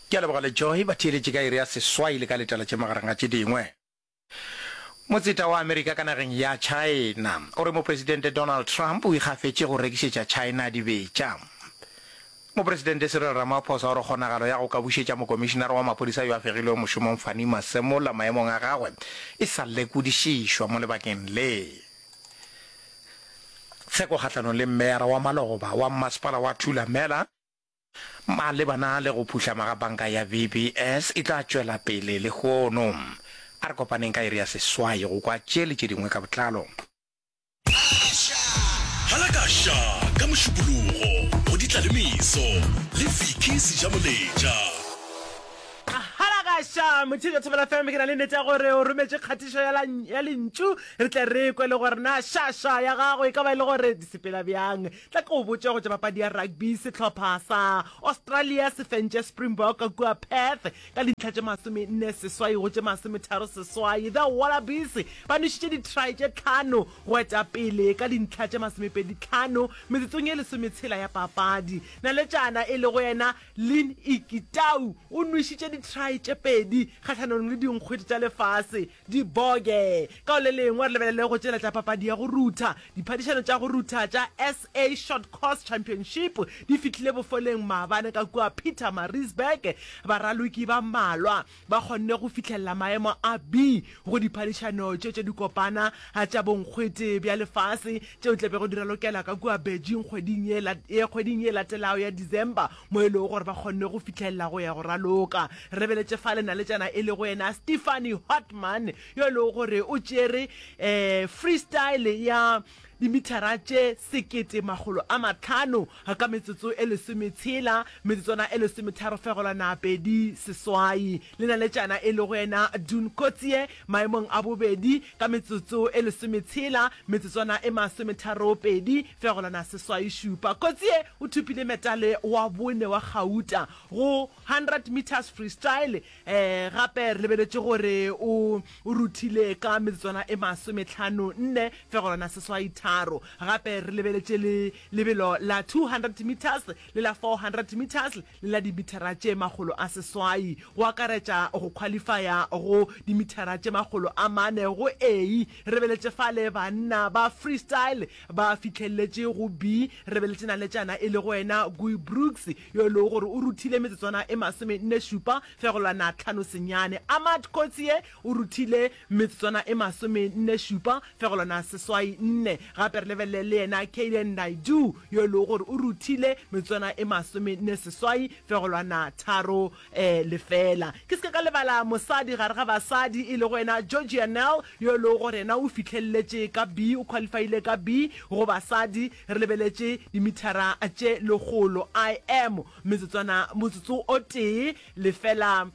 Ke a leboga le Joy ba theeletše ka iri ya seswai le ka letela tše magareng ga tše dingwe. Motseta wa Amerika ka nageng ya China o re Mopresidente Donald Trump o ikgafetše go rekišetša China dibetša. Mopresidente Cyril Ramaphosa o re kgonagalo ya go ka bušetša mokomišinara wa maphodisa yo a fegilwego mošomong Fannie Masemola maemong a gagwe e sa lekodišišwa mo lebakeng le. Tsheko kgahlanong le meyara wa maloba wa mmasepala wa Thulamela malebana le go phuhlama ga banka ya VBS e tla tšwela pele lehono. A re kopaneng ka iri ya seswai go kwa tše le tše dingwe ka botlalo. Halakasha ka Mošupologo go Ditlalemeso le Vicky Sejamoletša. Kgalagaša Motšheletšo Thobela FM, ke na le nnete ya gore o rometše kgatišo ya, la, ya lentšu. Re tle re kwe le gore na šaša ya gago e ka ba e le gore di sepela bjang. Tla ke o botše go tša papadi ya rugby. Sehlopha sa Australia se fentše Springbok kua Perth ka dintlha tše masomenne seswai go tše masometharo seswai. The Wallabies ba nwešitše ditry tše tlhano go eta pele ka dintlha tše masomepedi tlhano metsotsong ye lesometshela ya papadi. Naletšana e lego yena Lynn Ikitau o nwešitše ditry tše pedi kgahlanong le dinkgwete tša lefase, diboge. Ka go le lengwe re lebelele go tšweletša papadi ya go rutha. Diphadišano tša go rutha tša SA Short Course Championship di fihlile bofoleng maabane ka kua Pietermaritzburg, baraloki ba mmalwa ba kgonne go fihlelela maemo a B go diphadišano tše tša dikopana tša bonkgwete bja lefase tšeo e tla bego di ralokela ka kua Beijing kgweding ye e kgweding ye e latelago ya December mo e lego gore ba kgonne go fihlelela go ya go raloka. Re beletše fale naletšana e lego yena Stephanie Hartmann yo e lego gore o tšere um freestyle ya dimithara tše sekete makgolo a mahlano ka metsotso e lesometshela, metsotswana e lesometharo fegelwana pedi seswai, le naletšana e lego yena Dune Coetzee maemong a bobedi ka metsotso e lesometshela, metsotswana e masometharo pedi fegelwana seswai šupa. Coetzee o thopile metale wa bone wa gauta go 100 metres freestyle Gape re lebeletše gore o ruthile ka metsotswana e masome-tlhano nne fegolwana seswai tharo. Gape re lebeletše le lebelo la 200 metres le la 400 metres le la dimithara tše makgolo a seswai, go akaretša go khwalifaya go dimithara tše makgolo a mane go A. Re lebeletše fale banna ba freestyle ba fihlelletše go B. Re lebeletše naletšana e lego yena Guy Brooks. yo e lego gore o ruthile metsotswana e masomenne-šupa fegolwana tlhano senyane. Ahmad Coetzee o ruthile metsotswana e masomenne-šupa fegolwana seswai nne. Gape re lebelele le yena Kayden Naidoo yo e lego gore o ruthile metsotswana e masomenne seswai fegolwana tharo lefela. Ke se ke ka lebala mosadi gare ga basadi e lego yena Georgia Nel yo e lego gore yena o fihlelletše ka B, o qualifiile ka B go basadi. Re lebeletše dimithara tše lekgolo, I am, metsotswana, motsotso o tee, lefela,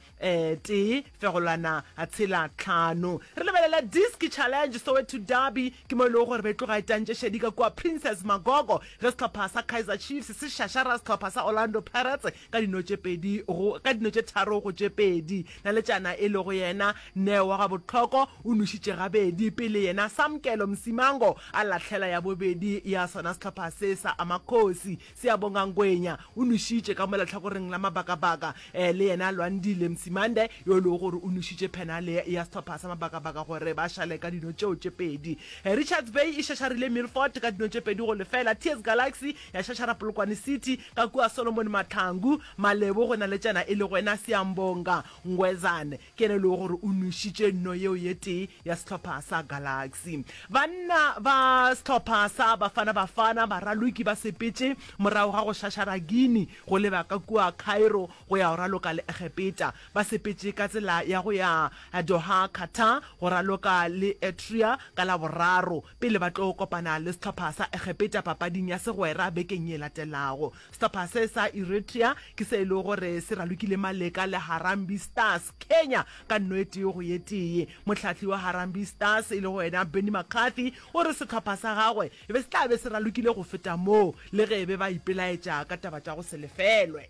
tee, fegolwana, tshela, tlhano. Re lebelela Diski Challenge, Soweto Derby, ke mo e lego gore be tloga e tantše šedi ka kua Princes Magogo ge sehlopha sa Kaizer Chiefs se šašara sehlopha sa Orlando Pirates ka dino tše pedi go, ka dino tše tharo go tše pedi, Naletšana e lego yena Neo wa gabohloko o nwešitše gabedi pele yena Samkelo Msimango a lahlela ya bobedi ya sona sehlopha se sa Amakhosi. Siyabonga Ngwenya o nwešitše ka mo lehlakoreng la Mabakabaka, eh, le yena Lwandile Msimande yo e lego gore o nwešitše phenale ya sehlopha sa Mabakabaka gore ba šale ka dino tšeo tše pedi. Eh, Richards Bay e šašarile Milford ka dino tše pedi go lefela, TS Galaxy ya šašara Polokwane City Ka kua Solomon Mahlangu, Malebo go na le tšana e lego yena Siyambonga Ngwezane. Ke yena e lego gore o nwešitše nno yeo ye tee ya sehlopha sa Galaxy. Banna ba sehlopha sa Bafana Bafana ba raloki ba sepetše morago ga go šašara Guinea go leba ka kua Cairo go ya go raloka le Egepeta. Ba sepetše ka tsela ya go ya Doha, Qatar go raloka le Eritrea ka Laboraro. pele ba tlo kopana le sehlopha sa Egepeta papading ya segwera bekeng ye latelago. Sehlopha se sa Eritrea ke se e lego gore se ralokile maleka le Harambee Stars, Kenya, ka nno e tee go ye tee. Mohlahli wa Harambee Stars e lego yena Benni McCarthy o re sehlopha sa gagwe e be se tla be se ralokile go feta moo le ge e be ba ipelaetša ka taba tša go se lefelwe.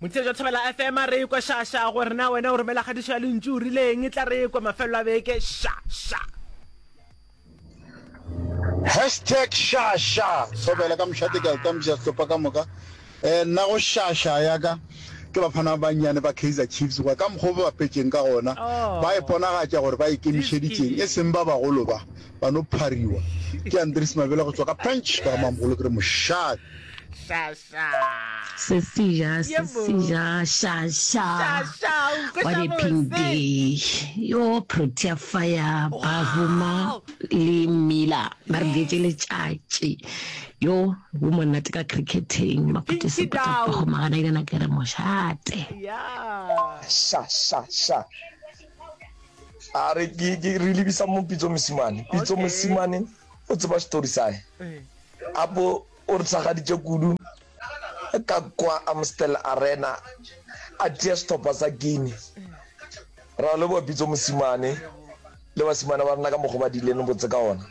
Motšeetši wa Thobela FM a re ekwa šaša gore na wena o romela kgadišo ya lentšu o rileng e tla re ekwa mafelelo a beke šaša. Hashtag šaša Thobela ka mošate ke a okamša sehlopha ka moka eh, nna go šaša ya ka ke baphana ba bannyane ba Kaizer Chiefs goba ka mokgwa o ba bapetšeng ka gona oh. ba iponagatša gore ba ikemišeditšeng e seng ba bagolo ba ba no phariwa ke andres mabele go tswa ka pench ka mamogolo ke re mošate Se seja, se seja, sha, sha, what a pink day. Yo, Protea Fire, Bavuma le Miller ba re beetše letšatši. Yo, go monate ka cricketeng, Makhutšo Sebata Pakgomagana ke yena ke re mošate. Sha, sha, sha. A re ke, ke re lebisa mo Pitso Mosimane. Pitso Mosimane o tseba story sa hae. Apo O re tshwagaditše kudu ka kwa Amstel Arena a tia sehlopha sa Guinea. Ra o leboga Pitso Mosimane le basimane ba rena ka mokgo ba dileng botse ka ona.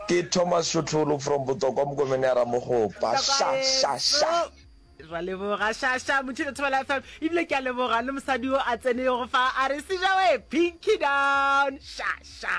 Ke Thomas Shotlholo from Botokwa Mokomene ya Ramogopa. Sha sha sha. ra leboga shasha motho le thobela fm ebile ke a leboga le mosadi o a tsenego fa a re sejawe pinky down shasha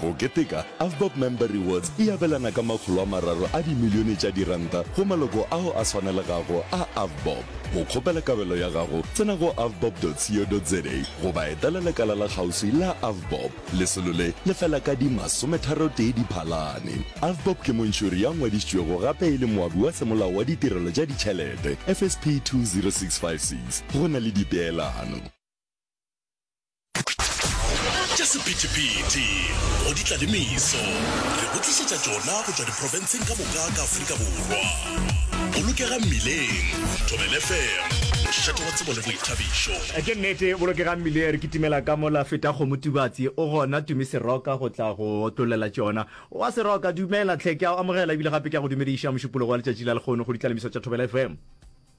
Go keteka, Avbob Member Rewards e abelana ka makgolo a mararo a dimilione tša diranta go maloko ao a swanelegago a Avbob. Go kgopela kabelo ya gago, tsena go avbob.co.za goba etela lekala la kgauswi la Avbob. Lesolo le le fela ka di masometharotee Diphalane. Avbob ke montšhori ya ngwadišitšwego gape e le moabi wa semolao wa Ditirelo tša Ditšhelete, FSP 20656. Go na le dipeelano. Tša sephethephethe go di tla le meso, re go tlišetša tšona go tšwa diprofenseng ka moka ka Afrika Borwa. Bolokegang Mmileng, Thobela FM, mošate wa tsebo le boithabišo. Ke nnete, Bolokegang Mmileng re kitimela ka mola. Fetakgomo Tubatsi o gona, Tumi Seroka go tla go otlolela tšona. Owa Seroka, dumela tlhe, ke a go amogela ebile gape ke a go dumediša mošupologo wa letšatši la lekgono go di tla le meso tša Thobela FM.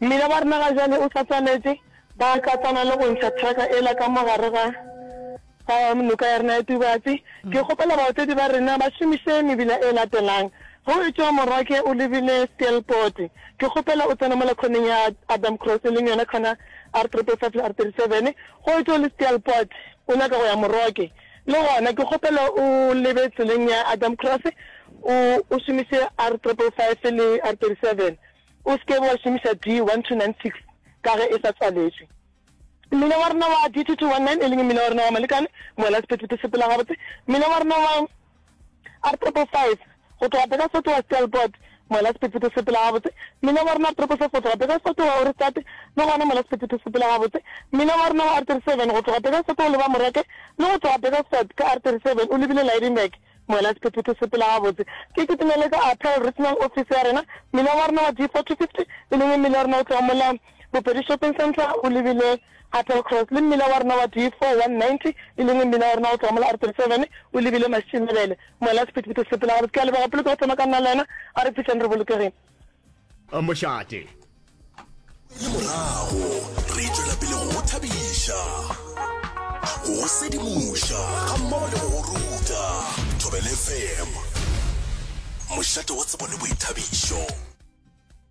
Mmila wa rena ga jale o hlatswaletše, ba tlatsana le go ntšha traka ela ka mo gare ga ga noka ya rena ya Tubatse. Ke kgopela baotledi ba rena ba šomiše mebila e latelang. Ge o etšwa Morake o lebile Steelpoort, ke kgopela o tsene mola khoneng ya Adam Cross e leng yona khona R3.5 le R37. Ge o etšwa o le Steelpoort o nyaka go ya Moroke, le gona ke kgopela o lebe tseleng ya Adam Cross o o šomiše R3.5 le R37. O se ke be wa šomiša D1296 ka ge e sa tswaletšwe. Mmila wa rena wa D2219, e leng mmila wa rena wa molekane, mola sephethephethe se phela gabotse, mmila wa rena wa R555 go tloga Burgersfort wa Stelpot, mola sephethephethe se phela gabotse, mmila wa rena R774 go tloga Burgersfort wa Ohrigstad, le gona mola sephethephethe se phela gabotse, mmila wa rena wa R37 go tloga Burgersfort o leba Morake, le go tloga Burgersfort ka R37 o lebile Lydenburg. Moela sephethephethe se pela gabotse. Ke kitimele ka Apel Regional Office ya rena, mmila wa rena wa D4-250, e leng mmila wa rena o tloga mola Bopedi Shopping Centre o lebile Apel Cross, le mmila wa rena wa D4-190, e leng mmila wa rena o tloga mola R37 o lebile Mašinebele. Moela sephethephethe se pela gabotse. Ke a leboga pele ke go tsena ka nna le wena, a re fihleng re bolokegile. mošate le morago re tšwela pele go thabiša go sedimoša ga mmogo le go ruta thobelefm mošate wa tsebo le boithabišo